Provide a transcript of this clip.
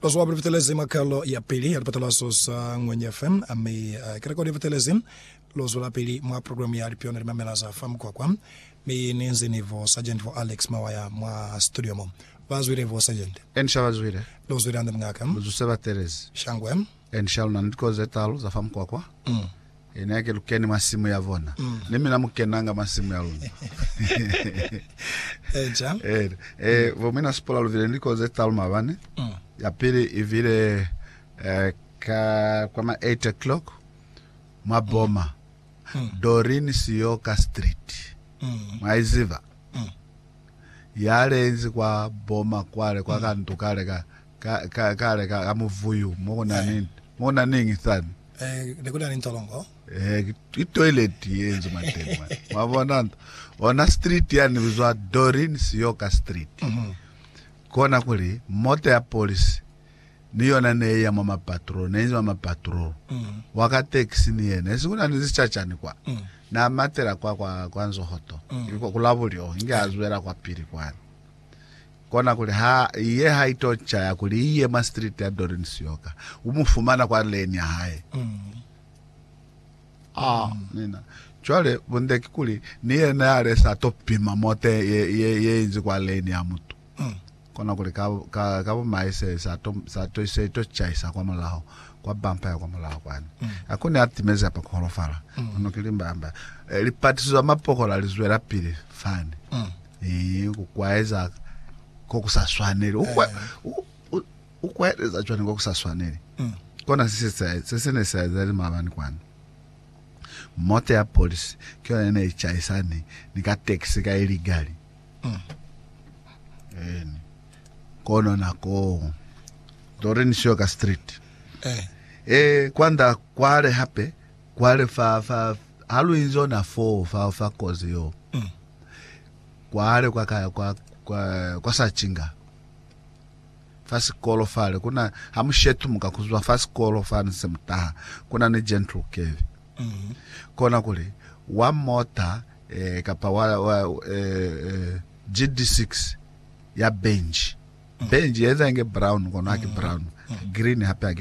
Bazuba ba fetelezi mwa kalo ya pili ya lipatalazo za Ngwenya FM, mi kereke li fetelezi. Lu zwelapili mwa programu ya Lipyona li mamela za fa Mukwakwa, mi ni nze ni Vo Sargent Vo Alex Mawaya mwa situdio mo. Ba zwile, Vo Sargent? Eni sha ba zwile. Lu zwile hande, Muñaka. Lu zuse ba telezi. Shangwe. Ene ni Shalona ni likozi ze talu za fa mukwakwa. Ene yake lu keni mwa simu ya bona. Ni mina mu kenanga mwa simu ya luna. Eca. Ene. E, bo mina Sipora lu vile ni likozi ze talu mabane. Ya pili i vile e, ka kwa ma 8 o'clock mwa Boma. Doreen Siyoka Street. Mwa i ziba? Ya lenzi kwa Boma kwale, kwa ka ndu kale ka Ka, ka, kale, ka, ka muvuyu, mo ku na ni, mo ku na niñi sani? Eh, ne ku na ni ntolongo. Eh, ki, ki toilet ye nzuma teñi mwa. Mwa bona? Ona street yani ni bizwa Doreen Sioka Street. Mhm. Kona kuli, mota ya polisi, ni yona ne iya mwa mapatrol, ne inzi mwa mapatrol. Mhm. Wa ka taxi ni yena. Esi ku na ni zicacani kwa. Mhm. Na matela kwa, kwa, kwa nzohoto. Mhm. Kwa, ku la bulyo, inge a zwela kwapili kwani. Kona kuli ha iye ha ito caya kuli iye mwa street ya Doreen Siyoka, u mu fumana kwa lane ya hae. Ha nina cwale bunde kikuli ni yena ya le sa to pima mote ye, ye, ye inzi kwa lane ya mutu. Kona kuli ka, ka, ka bumai se sa to, sa to, se ito caisa kwa mulaho, kwa bumper ya kwa mulaho kwani. Ha kuni a timezi apa ku holofala. Kono ki limba, amba, eh, lipatiso za mapokola li zwelapili fani. Ee, ku kwaeza ko ku sa swaneli. U, kwa, u, u, u kwaeleza cwani ko ku sa swaneli? Kona se se sa- se se ne sa ezahali maabani kwani. Mota ya polisi ki yona ye ne i chaisani ni ka taxi ka iligali. Eni. Kono nakoo, lori ni siyo ka street. Eh, kwanda kwale hape. Kwale fa, fa, ha lu inzi ona foo, fa, fa kozi yo. Kwale kwa, ka, kwa, kwa, kwa sa cinga. Fa sikolo fale, kuna, ha mu shetumuka kuzwa fa sikolo fa ni se mutaha, kuna ni Gentle Kevy. Kona kuli, wa mota, eh, kapa wa, wa, eh, eh, GD6, ya benji. Benji yenza inge brown, kono haki brown. Green hape haki.